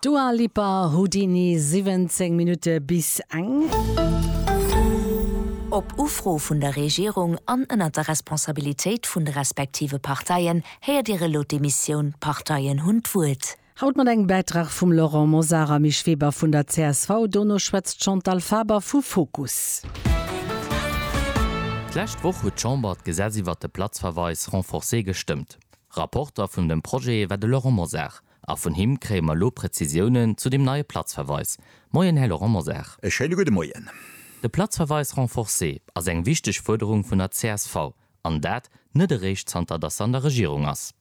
Dua Lipa, Houdini, 17 Minutte bis eng. Op Ufro vun der Regierung an ënnert der Responsabilitéit vun de respektive Parteien héiert Dir elo d'Emissioun D'Parteien hunn d'Wuert. Haut mat engem Bäitrag vum Laurent Mosar a Misch Weber vun der csv. Dono schwätzt d'Chantal Faber vu Fokus. D'lescht Woch huet d'Chamber d'Gesetz iwwert de Platzverweis renforcé gestëmmt. Rapporter vun dem Projet war de Laurent Mosar a vun him kréie mer elo Prezisiounen zu deem neie Platzverweis. Moien, Här Laurent Mosar. E schéine gudde Moien. De Platzverweis renforcé ass eng wichteg Fuerderung vun der csv, an dat net eréischt zanter datt se an der Regierung ass.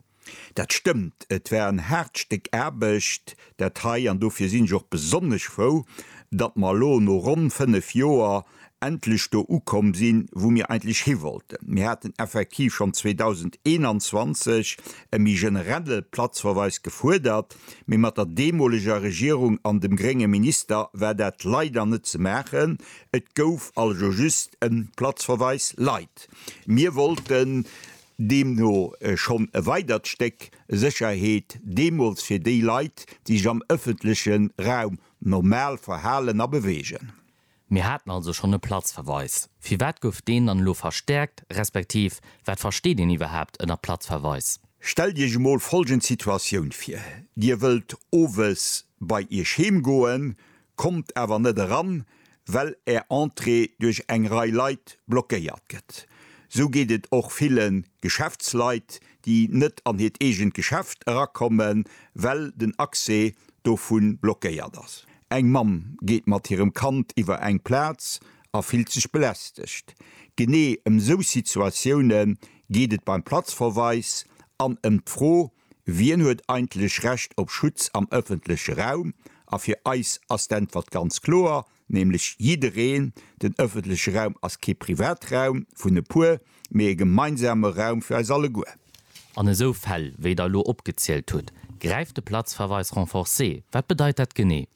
Dat stëmmt. Et war en haart Stéck Aarbecht, dat hei, an dofir sinn ech och besonnesch frou, datt mer elo no ronn fënnef Joer endlech do ukomm sinn, wou mir eigentlech hiwollten. Mir haten effektiv schonn 2021 e méi generelle Platzverweis gefuerdert, mee mat der deemoleger Regierung an dem grénge Minister war dat leider net ze maachen. Et gouf also just e Platzverweis lait. Mir wollten deemno schonn e weidert Stéck Sécherheet deemools fir déi Leit, déi sech am ëffentleche Raum normal verhalen a beweegen. Mir haten also schonn e Platzverweis. Firwat gouf deen dann elo verstäerkt, respektiv wat versteet een iwwerhaapt ënner Platzverweis? Stellt Iech emol folgend Situatioun vir, Dir wëllt owes bei Iech heem goen, kommt awer net eran, well Är Entrée duerch eng Rei Leit blockéiert gëtt. Sou geet et och ville Geschäftsleit, déi net an hiert eegent Geschäft erakommen, well den Accès dovu blockéiert ass. Eng Mamm geet mat hirem Kand iwwer eng Plaz a fillt sech belästegt. Genee ëm sou Situatioune geet et beim Platzverweis an ëm d'Fro, Wien huet eigentlech Recht op Schutz am ëffentleche Raum? A fir eis ass d'Äntwert ganz kloer, nämlech jiddereen. Den ëffentleche Raum ass kee Privatraum vun e puer, mee e gemeinsame Raum fir eis alleguer. An esou Fäll, wéi Der elo opgezielt hutt, gräift de Platzverweis renforcé. Wat bedeit dat genee?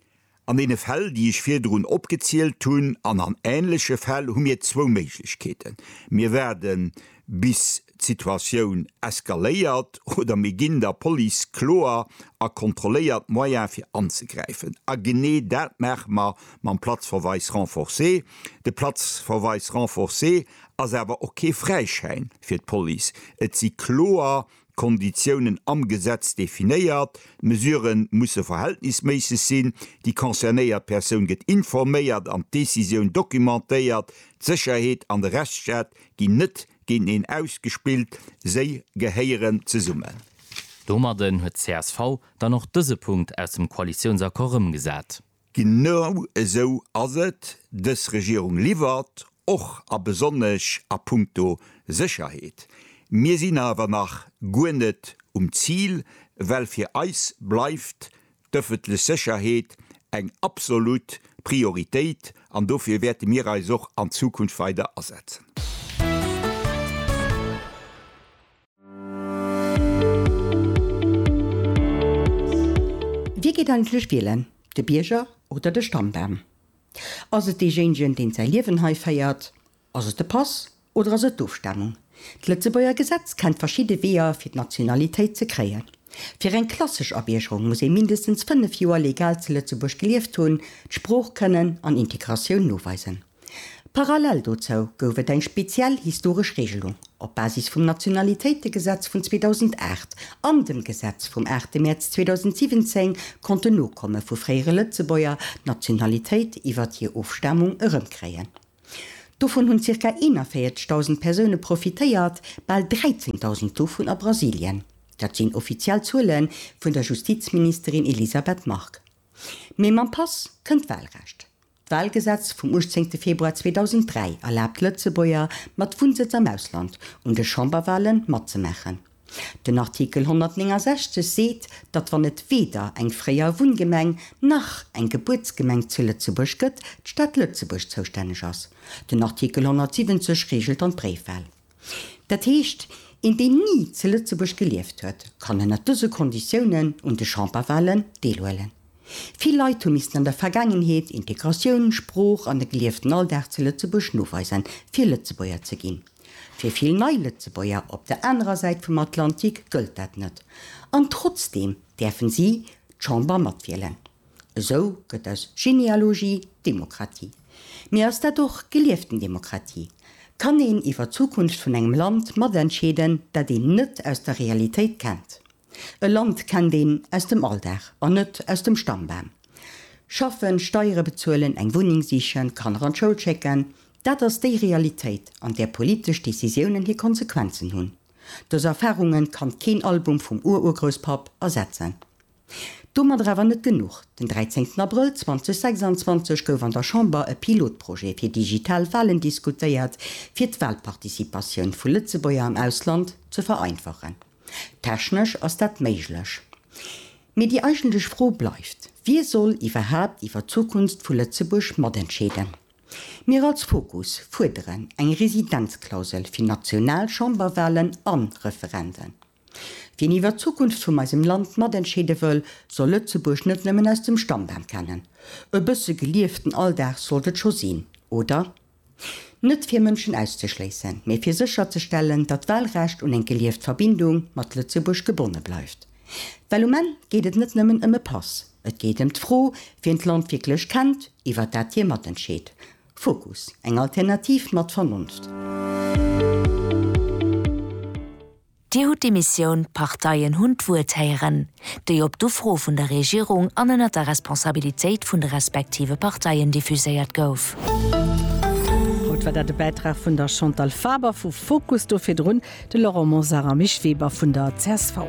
An deene Fäll, déi ech virdrun opgezielt hunn, an an änleche Fäll, hu mir zwou Méiglechkeeten. Mir waarde bis d'Situatioun eskaléiert oder mir ginn der Police kloer a kontrolléiert Moyene fir anzegräifen. A genee dat maache mer mam Platzverweis renforcé. De Platzverweis renforcé ass awer och kee Fräischäin fir d'Police. Et si kloer Konditiounen am Gesetz definéiert, d'Mesurë musse verhältnisméisseg sinn, déi concernéiert Persoun gëtt informéiert an d'Decisioun documentéiert, d'Sécherheet an de Rechtsstaat ginn net géinteneen ausgespillt, se gehéieren zesummen. Domadden huet d'CSV dann och dëse Punkt aus dem Koalitiounsaccord rëmgesat. Genau esou ass et, dës Regierung liwwert, och a besonnesch a punkto Sécherheet. Mir sinn awer nach guer net um Zil, well fir eis bleift d'öffentlech Sécherheet eng absolut Prioritéit an dofir wäerte mir eis och an Zukunft weider asetzen. Wie geet eigentlech wielen, de Bierger oder de Stammdamm? Ass et deejéinegen, deen säi Liewen hei féiert? Ass et de Pass oder ass et d'Ofstamung? D'Lëtzebuerger Gesetz kennt verschidde Weeër, fir d'Nationalitéit ze kréien. Fir eng klassesch Abiergerung muss ee mindestens 5 Joer legal zu Lëtzebuerg gelieft hunn, d'Sprooch kënnen an Integratioun noweisen. Parallel dozou gouf et eng speziell historesch Regelung op Basis vum Nationalitéitegesetz vun 2008 an dem Gesetz vum 8 Mäerz 2017 konnten Nokomme vu fréiere Lëtzebuerger d'Nationalitéit iwwert hir Ofstamung erëmkréien. Dovun hunn zirka 41.000 Persoune profitéiert, bal 13.000 dovun a Brasilien. Dat sinn offiziell Zuele vun der Justizministerin Elisabeth Margue. Mee mam Pass kënnt d'Walrecht. D'Walgesetz vum 18 Februar 2003 erlaabt Lëtzebuerger mat Wunnsëtz am Ausland un de Chamberwalen matzemaachen. Den Artikel 169 seet, datt wann et weder eng fréier Wunngemeng nach eng Gebuertsgemeng zu Lëtzebuerg gëtt, d'Stad Lëtzebuerg zoustänneg ass. Den Artikel 170 reegelt dann d'Bréifwal. Dat heescht, een deen ni ze Lëtzebuerg gelieft huet, kann ënnert dëse Konditiounen un de Chamberwalen deelhuelen. Vill Leit hu missten an der Vergaangenheet Integratioun, Sprooch an e gelieften Alldag ze Lëtzebuerg noweisen, fir Lëtzebuerger ze ginn. Fir vill nei Lëtzebuerger op der anerer Säit vum Atlantik gëllt dat net. An trotzdeem däerfen si d'Chamber matwielen. Esou gëtt aus Genealogie Demokratie. Mee ass dat och gelieften Demokratie? Kann een iwwer d'Zukunft vun engem Land matentscheeden, dat een net aus der Realitéit kennt? E Land kennt een aus dem Alldag an net aus dem Stammbam. Schaffen, Steiere bezuelen, eng Wunneng sichen, Kanner an d'Schoul schécken, dat ass déi Realitéit, an där politesch Decisiounen hir Konsequenzen hunn. Dës Erfarunge kann keen Album vum Ururgrousspapp ersetzen. Domadder awer net genuch, Den 13 Abrëll 2026 gouf an der Chamber e Pilotprojet fir digital Walen diskutéiert, fir d'Walparticipatioun vu Lëtzebuerger am Ausland ze vereinfachen. Technesch ass dat méiglech, mee déi eigentlech Fro bleift, Wie soll iwwerhaapt iwwer d'Zukunft vu Lëtzebuerg matentscheeden? Mir als Fokus fuerderen eng Residenzklausel fir national Chamberwalen an Referenden. Wien iwwer d'Zukunft vum eisem Land matentscheede wëll, soll Lëtzebuerg net nëmmen aus dem Stammbam kennen. E bësse gelieften Alldag sollt et scho sinn, oder? Net fir Mënschen auszeschléissen, mee fir sécherzestellen, datt d'Wahlrecht un eng gelieft Verbindung mat Lëtzebuerg gebonne bleift. Well um Enn geet et net nëmmen ëm e Pass, et geet ëm d'Fro, wien d'Land wierklech kennt, iwwer dat hie matentscheet, Fokus, Eng Alternativ mat Vernunft! Dir hutt d'Emissioun D'Parteien hunn d'Wuert héieren, déi op d'Ufro vun der Regierung an ënnert der Responsabilitéit vun de respektive Parteien diffuséiert gouf. Haut war dat e Bäitrag vun der Chantal Faber vu Fokus, do virdrun de Laurent Mosar a Mich Weber vun der csv.